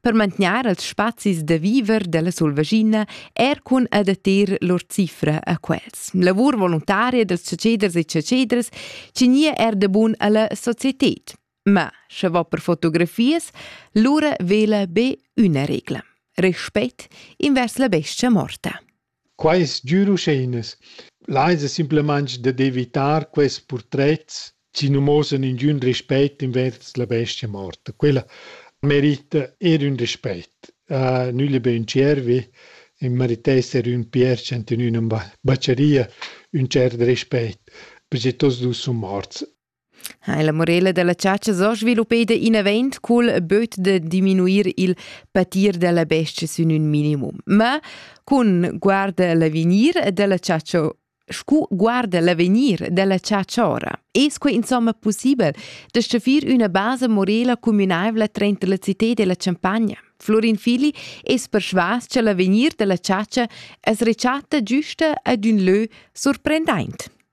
per mantegner els spazis da viver della Sulvagina er cun adattar lur cifra a quels. Lavur voluntaria dels ceceders e cecedres cinia er de bun alla societet. Ma, sche va per fotografies, lura vela be üna regla. Respect invers la bestia morta. Quai es dür uscheinas. Là es simplamaing d'evitar quels purtrets chi nu mosan ingün rispet invers la bestia morta. Quella merita eir ün rispet. Nügl be ün tschiervi, i meritess eir ün pierch ant in üna bacheria ün tschert rispet, perche tuots dus sun morts. Ha la morela dalla chatscha zo sviluppeda inavent cul böt da diminuir il patir dalla bestia sün ün minimum. Ma cun guarda l'avegnir dalla chatscha scu guarda l'avegnir dalla chatscha ora es quai insomma pussibel da staffir üna basa morela cumünaivla trainter la cità e la champagna. Florin Fili es persvas cha l'avegnir da la chatscha es rechatta giüsta ad ün lö surprendaint.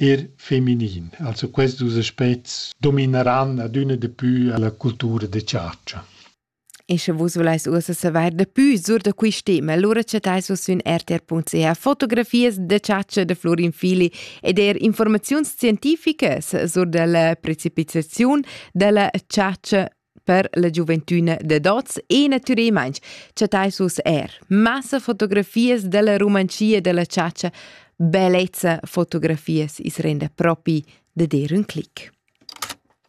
er feminin. Also questi due aspetti domineranno adüna di più la cultura de chargia. E sche vus voleis ussa saver de più sur da quei tema, allora chattais vus sün rtr.ch fotografias de chargia de Florin Fili ed er informaziuns scientificas sur della precipitazione della chargia per la giuventüna dad hoz e natüralmaing chattais vus eir massa fotografias da la Rumanschia da la chatscha. Bellezza fotografias is renda propi da dir ün clic.